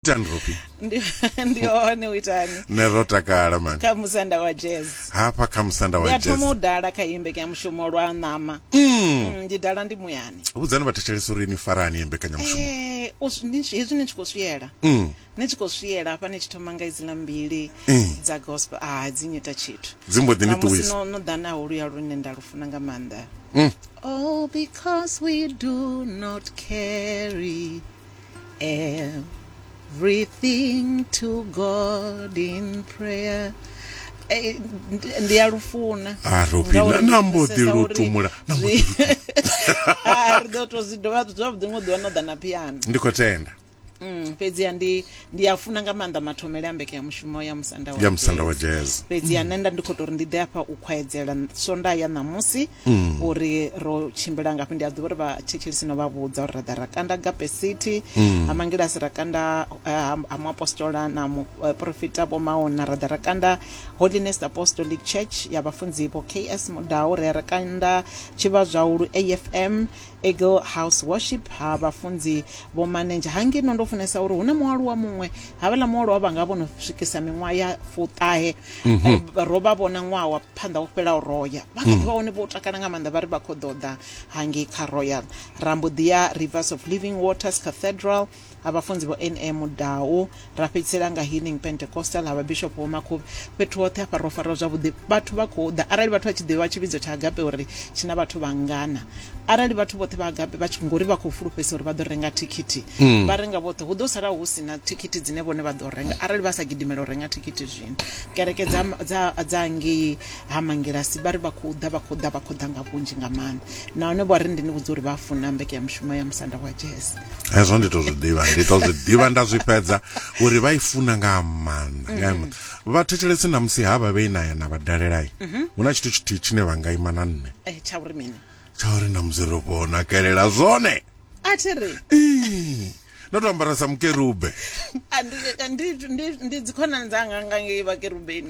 itani robi ndi ndi hone u itani ne ro takala mani kha musanda wa jazz hafha kha musanda ndi wa a thoma jazz u dala kha imbe kya mushumo lwa ṋama Mm, ndi dala ndi muyani vhudzani vhathetshelesi uri ni farani ye mbekanyamushumo Eh, u swi- ni- hezwi ni tshi khou swiyela Mm, ni tshi khou swiyela hafha ni tshi thoma nga idziḽa mbili Mm. dza gospel a dzi nyita tshithu dzi mbo ḓi ni ṱuwisa no no ḓa naho luya lune nda lu funa nga maanḓa Mm. oh because we do not carry everything to god in prayer Eh, ndi- ndi a lufuna a robi Ngauri na ndi nambo ḓi pfesesa uri lutumula nambo ḓi zwi- lutumula Ah, ri ḓo to zwi dovha zwavhuḓi ngo ḓiwa no ḓa na piano ndi khou tenda Mm, fhedziha ndi ndi a funa nga maanḓa mathomele a mbeke ya mushumo ya musanda wa ya musanda wa Jazz. jazz fhedziha nṋe nda ndi khou tou ri ndi ḓe afha u khwaedzela so nda ya ṋamusi mm. uri ro tshimbila ngafhi ndi a ḓivha uri vha thetshelisi no vha vhudza uri ra ḓa ra kanda gape city mm. ha mangilasi ra kanda eh, ha muapostola na muprofita eh, vhomaona ra ḓa ra kanda holiness apostolic church ya vhafunzi vho ks mudau ri ra kanda tshivha zwaulu afm Eagle House Worship ha vhafunzi vho manenzha hangeno ndo funesa uri hu na mualuwa muṅwe havhala mualuwa vha nga vho no swikisa miṅwaha ya fuṱahe mhm. eh, ro vha vhona ṅwaha wa phanḓa wo fhelaho roya vha kha ḓi vha hone vho takala nga maanḓa vha ri vha khou ḓoḓa hangei kha royal rambo ḓi ya rivers of living waters cathedral ha vhafunzi vho NA Mudau, ra fhedzisela nga Healing Pentecostal ha Vhabishopo vho Makhubvi. Fhethu hoṱhe hafha ro fariwa zwavhuḓi, vhathu vha khou ḓa. Arali vhathu vha tshi ḓivha tshivhidzo tsha Agape uri tshi na vhathu vhangana, arali vhathu vhoṱhe vha Agape vha tshi, ngori vha khou fulufhedzisa uri vha ḓo renga thikhithi, mm. vha renga vhoṱhe, hu ḓo sala hu si na thikhithi dzine vhone vha ḓo renga arali vha sa gidimela u renga thikhithi zwino. Kereke dza, dza, dza ngei ha Mangilasi vha ri vha khou ḓa, vha khou ḓa, vha khou ḓa nga vhunzhi nga maanḓa. Nahone vho ri ndi ni vhudza uri vha funa mbekanyamushumo ya musanda wa jazz. hezwo ndi to zwi ḓivha ndi to zwi ḓivha nda zwi fhedza uri vha i funa nga maanḓa nga maanḓa vha thetshelesi na musi ha vha vhe na ya na vha dalelai hu na tshithu tshithihi tshine vha nga ima na nṋe Eh, tsha uri mini tsha uri na musi ro vho nakelela zwone a thi ri Ii, ndo to ambara sa mukerube a ndi- ndi- ndi- ndi dzikhonani dzanga nga ngei vhakerubeni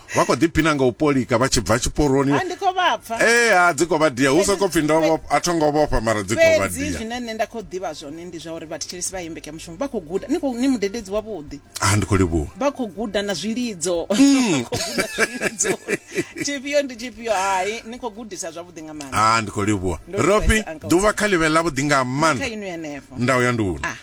vha khou ḓiphina nga u polika vha tshi bva tshiporoni ndi khou vha pfa ee ha dzi khou vha dia hu sokou pfhi ndo a tho ngo vhofha mara dzi khou vha dia fhedzi zwine nṋe nda khou ḓivha zwone ndi zwa uri vhathetshelesi vha imbeke mushumo vha khou guda ni khou ni mudededzi wavhuḓi a ndi khou livhuwa vha khou guda na zwilidzo mm. tshifhio ndi tshifhio hai ni khou gudisa zwavhuḓi nga maanḓa a ndi khou livhuwa rofi ḓuvha kha ḽivhe ḽavhuḓi nga maanḓa nda u ya nduni ah.